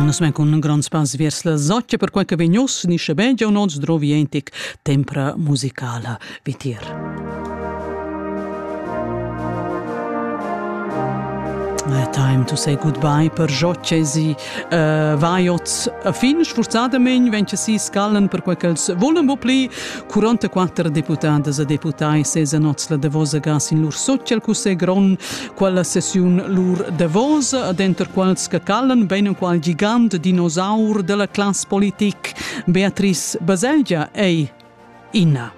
Nus men cun grond spans viers la zoccia per quei che vegn uss ni schabein giau nons drovientic tempra musicala vitir. Uh, time to say goodbye per jocesi uh, vaiot fin sforzadamein venche si scallen per quei ch'els volen bo pli 44 deputadas e deputai sesa nots la davosa gas in lur social cussegron quella sessiun lur davosa e denter quals che calan bein enqual gigant dinosaur della class politic Beatrice Baselgia ei Ina.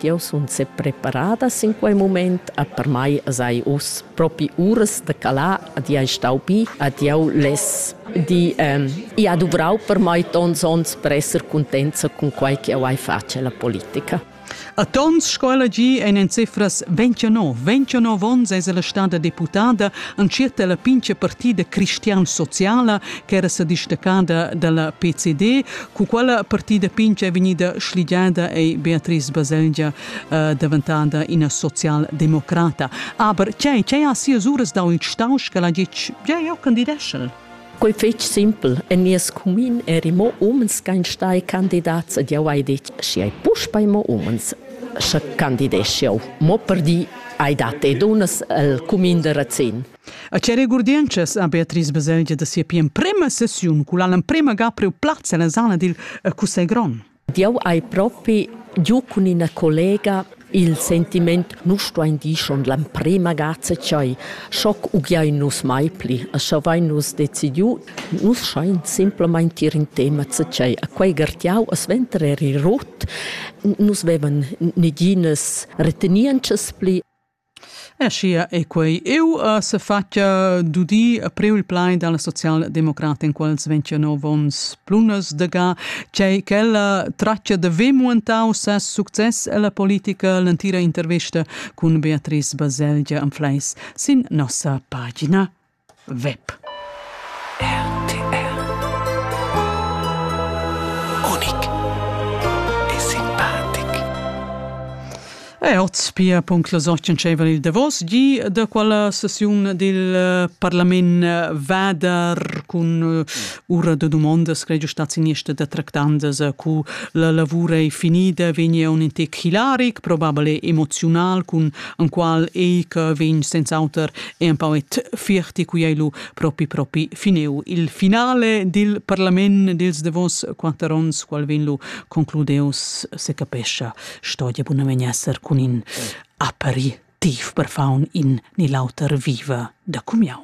Eu sun se preparada in quei moment a per mai sai us propi uras de calar ad ei stau bi ad eu les di ähm, i ha duvrau per mai tons ons per esser contenza con quai che eu hai face la politica. A tons scola gi ein en cifras 29, 29 onns eis ella stada deputada entschiet la pincha partida cristian-sociala ch'era sa distaccada dalla PCD, cu quella partida pincha è vegnida schligiada ei Beatrice Baselgia eh, daventada ina social-democrata. Aber tgei, tgei ha sias uras dau in stausch che la gitg, ja, eu candideschel? Quei fetg simpel. En nies cumin eri mo umens ch'ein stai candidats ed jau hai detg, schi hai puspei mo umens, sche candidesch jau. Mo per di hai dat e dunnas el cumin de Razin. A che regurdientschas ha Beatrice bisogn da sia pli emprema sessiun, culla l'emprema ga priu plaz ella zona dil Cussegl grond? Jau hai propi giu cun ina collega il sentiment nus stuain dir schon l'emprema gazia ch'ei schoc ugiai nus mai pli e scha vein nus decidiu nus schein simplamain tir in tema tschei a quei gartiau a sventer eri rot nus vevan neginas retenientschas pli Aschia ei quei iu sefatga d'udir priu il plaid dalla socialdemocrata in quels ventganov onns Plunasdega, tgei ch'ella tratga de ver muentau ses success ella politica l'entira intervesta cun Beatrice Baselgia Anfleis sin nossa pagina. web RTR Unik e simpatic E oz pia punct las ocen tscheivan il davos gi da quella sessiun dil eh, parlament eh, vader cun eh, ura da domondas che stat siniesta da tractandas cu la lavura è finida vegni un intec hilaric probabile emozional cun an qual ei che vegn senza auter e empau et fierti cui ei lu propi propi fineu il finale dil parlament dils davos quatter ons qual vegn lu concludeus se capescha sto ja buna vegn esser cun in aperitiv per faun in ni l'auter viva da cumiau